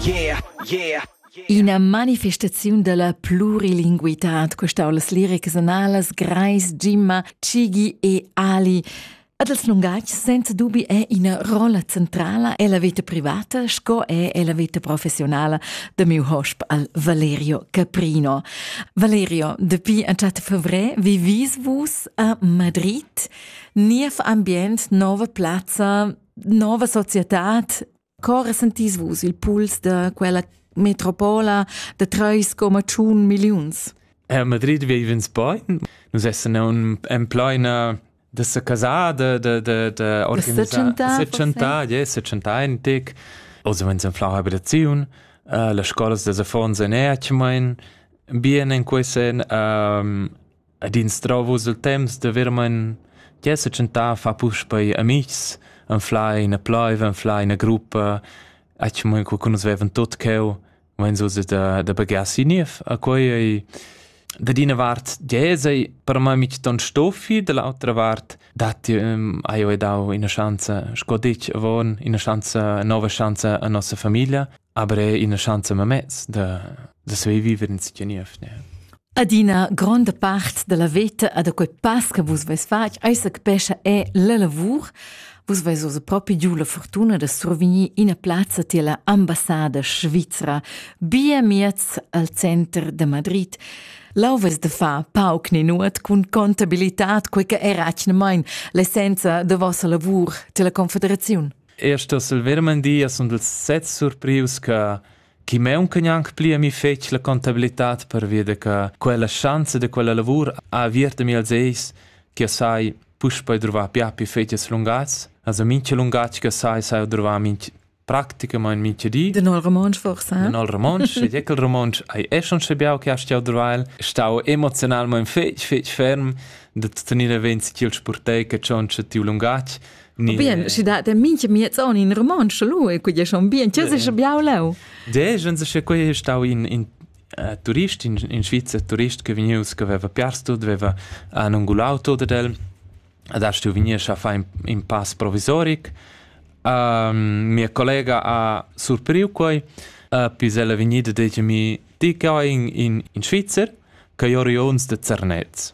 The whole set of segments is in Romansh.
Yeah, yeah. Ina manifestaziun dalla plurilinguitad questau las liricas analas Greis, Jimma, Cigi e Ali. Ad els lungatgs senza dubi è ina rolla centrala e la vita privata sco è e la vita professionala da miu hosp al Valerio Caprino. Valerio, depuis entschat fevrer vivis vus a Madrid, niev ambient, nova plazza, nova società, Co resentis vus il puls da quella metropola da treis coma tschun milliuns? A Madrid vivens bain. Nus essan en plaina da sa casada, da da da organisar 70, yeah, 71. Also wenn es eine Frauenhabilitation, uh, las scolas da affons en Erchmain, bien in quei sen, um, ed instrau vus il temps da veramein che setschentar a far puspei amitgs, anflar ina pleiv, anflar ina gruppa, atgmain co che nus vevan tot cheu, mein so da da baghiar si niev. A quei ei da d'ina vart dies ei per mei mitg ton stoffi, da l'autra vart datti hai jeu dau ina schanza, sco detg avon, ina schanza, nova schanza a nossa famiglia. Aber è ina schanza mamez da, da saver viver in stia niev, ne? Adina gronda part della veta a da quei pass che vus veis fatg eisa che pescha è la lavur vus veis osa propi giu la fortuna da survegnir ina plazza tier la ambassada svizra bia miez al center de Madrid Lau ves de fa pauc ni nuot cun contabilitad quei che era atgnamein l'essenza de vossa lavur tier la confederaziun. Eir sto Silverman dir as sun ils set surprius cha chi maunca gnanc pli a mi fetsch la contabilità pervia da cha quella schanza da quella lavur ha aviert a mi als eis chi as sai puspei druvar pia più fetg lungats. Also mincha lungatg che sai sai druvar minch praticamain mincha di. Den al romontsch forse? Den al romontsch, ed eckel romontsch ai è schon schabiau che astau druvail, stau emozionalment fetg fetg ferm da tenere venzi chi'l spurtei che tschontscha tiu lungatg, Bien, schi dat der minche miezon in romansch lu e quei schon bien, tscheu se biau leu. De, jen se che quei stau in in uh, turist in, in Svizzer turist che vegnius che aveva piars tut, aveva anungulau tot ed el ad stu vegnir a far in, in pass provisoric. Uh, mia collega ha surpriu quei, uh, pis ella vegnida detg mi, ti che in, in, in Svizzer, che io rions de Zernez.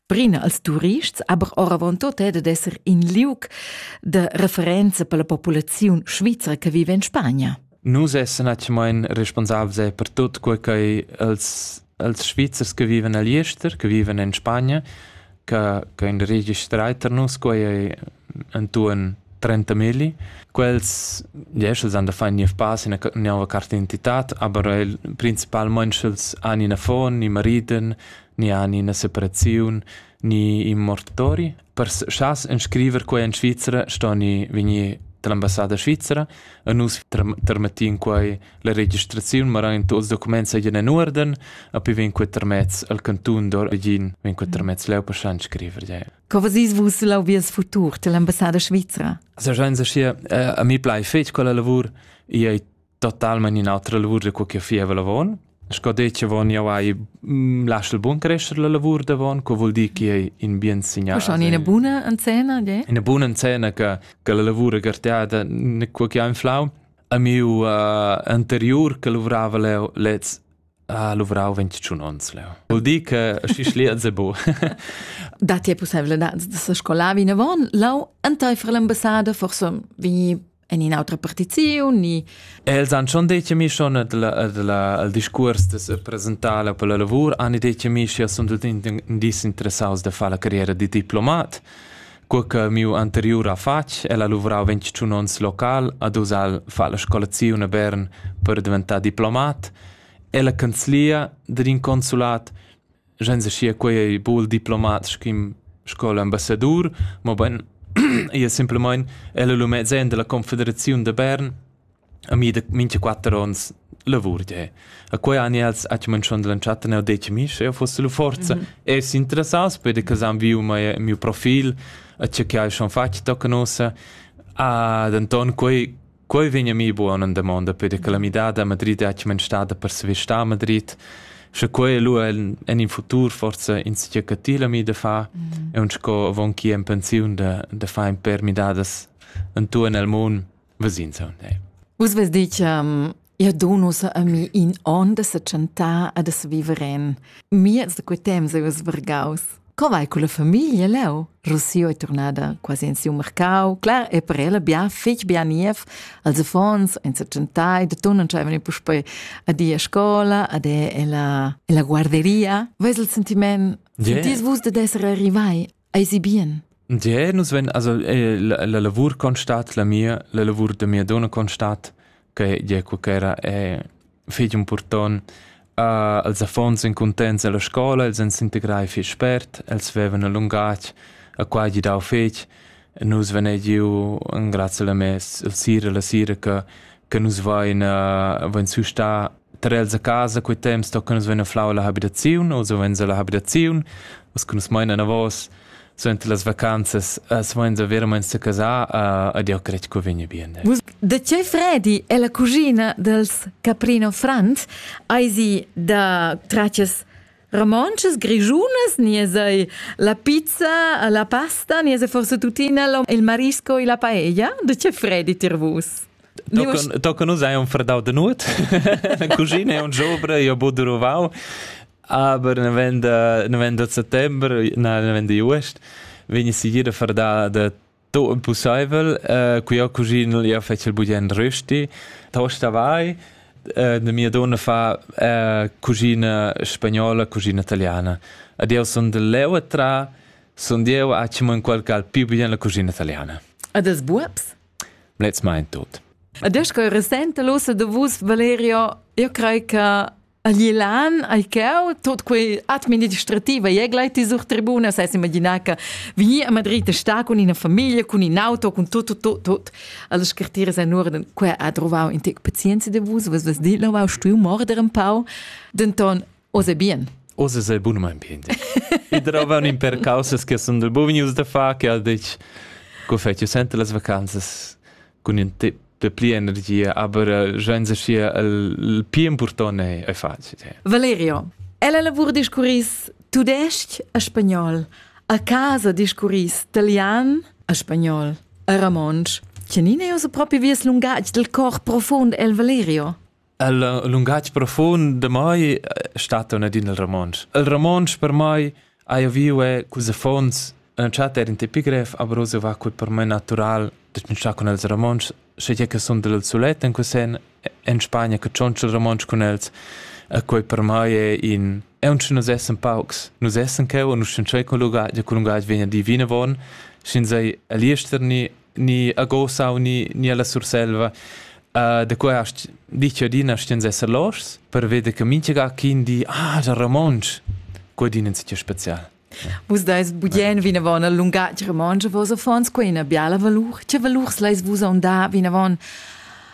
Brina als turists, aber oravontut è dad esser in liug de referenza per la populaziun svizra che vive in Spagna. Nus essen atgemain responsabels per tut quei che els, els Svizzers che viven a Liester, che viven in Spagna, che, che in registrai per nus quei è intorno 30 mili. Quels, yes, els han da fare niev pass in una carte d'identità, aber principalmente els hanno una fon, i mariden, ni han ina separaziun ni in mortori. Per schas inscriver quei en Svizra stoni vegnir dall'ambassada svizera e nus termettin quei la registraziun, ma in tuts documentsegen en uorden, a pi vegn quei termez al cantun d'origin, vegn quei termez leu per schan scriver. Ja. Co vesis vus lau vies futur dell'ambassada svizera? Also schein sa schi, a mi plai fetg quella lavur, ei totalmain in'autra lavur da co che fieva lavon. Sco detg avon jau hai mm, lasciu bun crescere la lavur davon, co vuol dir che è in bien signal. Schon in buona encena, de? In buona encena che che la lavura garteada ne quo che ha inflau. A miu uh, anterior che lavorava lez Ah, luvrau ventschun onns leu. Vul dir che schi schlia ze bu. Da ti è pussevledat da se scolar vinavon, lau enteifer l'ambassada forse vi en un'altra partizione ni Els han schon detto mi schon al discurs de se presentare per la lavor, han detto mi sia sunt tutti indies interessados de fare la carriera di diplomat. Cur che miu anteriur affar el ha luvrau ventschun onns local ad Usal fa la scolaziun a Bern per diventar diplomat, è la canzlia dad in consulat senza sia quei ei bul diplomat sch'im sco l'ambassadur, mobein ia simplemein el lu mezzen della confederaziun de Bern A mi da mincha quatter ons lavur d'he. E quai han els actualmaing schon da l'entschatta neu detg a mi, sche eu foss la forza. Es interessaus peder che s'han viu mei miu profil, a cha que hai schon fatg tocan ussa. Ah, denton quei quei vegn a mi buona damonda peder che la midada a Madrid è actualmaing stada per svestà a Madrid. Sche quei lu en, en in futur forse in sia catila mi da fa, mm. e un sco avon chi en pensiun da, da fa in per midadas en tu en el mund Vesinsa, ne. Vus ves dich, um, Ia do nus a mi in on da se chantar e da se viver en. Miez da quei temps eus vargaus. Co vai con la famiglia leu? Rossio è tornada quasi in siu mercau, clar e per ella bia fetg bia niev, als affons ein se chantai, da ton non c'avevano i puspei a di a scola, ad è ella ella guarderia. Veis il sentiment? Yeah. Sentis vus da essere arrivai Eisi bien? Ja, nus ven, also eh, la, la lavur constat, la mia, la lavur da mia donna constat, che ja qualchera è fetg important. Uh, els affons en contents alla scola, els en s'integrai fich spert, els vevan a lungatg, a qua gi dau fetg. Nus ven giu en grazie alla mes, il sira, la sira che, che nus vain, uh, vain su sta Tar els a casa quei temps tocan nus vein a flau la habitaziun o suvenz alla habitaziun, us cun nus maina anavos suenter las vacanzas suvenz a veramein secasar a, ed jau cred che vegni bien. Vus da tgei fredi è la cugina dels Caprino Franz hai sie da traccias romances, grigiunas, ni sei la pizza, la pasta, ni sei forse tuttina il marisco e la paella? Da tgei fredi tir vus? Tochen, tochen nus hai un fredau de nut, la cuschina è un giobra, io bu duruvau, aber ne ven de, ne ven de settembre, na, ne ven de juest, vegni sigira fredau de to impossibel, uh, cu io cucino io fece il bugen rösti, tosta vai, uh, de mia donna fa uh, cucina spagnola, cucina italiana. Ad io son de leu tra, son io a ci in qualche al più bien la cucina italiana. A des buobs? Let's mind tot. Adesso che resente l'ossa de vus, Valerio, io crei che a Glilan ai ceu tot quei administrativa e gleit sur tribuna sai imaginar che vegni a Madrid a sta con ina famiglia, con in auto, con tot tot tot tot alle scartire sai nur den quei ha trovau in tec pazienza de vus, was was dit lo stui morder un pau. Denton Oz è bien. Oz è bunamain bien. I trovan in per causas che sono buon news da fare che ha detto che fai sente le vacanze con un tip pli energia, aber eh, senza sia il più importante è facile. Valerio, ella lavora discurris tudesc e spagnol, a casa discurris italian e spagnol e romansch. Canine io su proprio vies lungatg del cor profond el Valerio? Il lungatg profund de mai stat un adin il romontsch. Il romontsch per mai hai viu è cus affons Entschat er in tipigrev, aber so war quel per me natural, dass ich con els romontsch, sche je che son del sulet in cusen in Spagna che cionch il romontsch con els, e quei per mai è in e uns nus essen paucs, nus essen cheu und nus sind schon con lungatg, con lungatg vegna divina von, sin sei elisterni ni a Gosau ni, ni alla Surselva. Uh, da qua hast ditg adina stens esser loschs per veder che minchega quin di ah, già romontsch, quadin in sitio special. Vus dais budien vinavon al lungatg romontsch, vos affons quei ina biala valur. Che valurs leis vus onda vinavon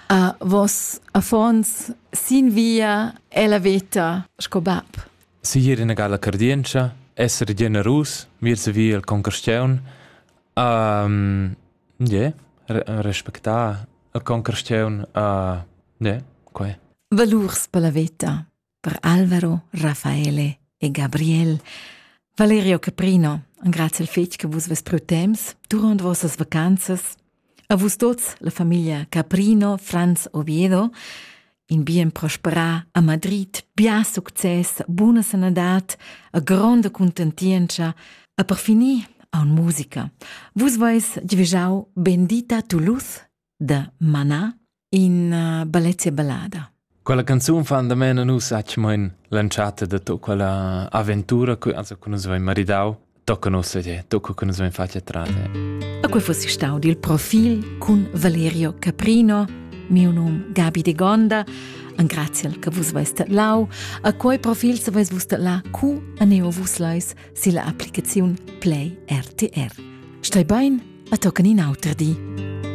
a vos affons sin via e la veta sco bab? Sir ina gala cardientscha, esser generus, vir se via il concursiun, Ie, respectar a concursiun, ie, quai. Valurs per la veta per Alvaro, Raffaele e Gabriel. Valerio Caprino, grazie al fetg che vus vos pro temps durant vossas vacanzas. A vus tots, la famiglia Caprino, Franz Oviedo in bien prosperà a Madrid, bia success, buna sanadad, a gronda contentientscha, a per finir aun musica. Vus vais divigiau Bendita Toulouse da Mana in uh, Balezia Ballada. Quella canzun fan da mena nus acmain l'entschatta de to quella avventura che also con nus vai maridau tocca nos sedè, tocca che nus vein fatg trate. A quei fossi stau dil profil cun Valerio Caprino, miu num Gabi de Gonda, an graziel che vus veis lau, a quei profil se veis vus la cu a neo vus leis si la applicaziun Play RTR. Stai bein, a toccani in auter di.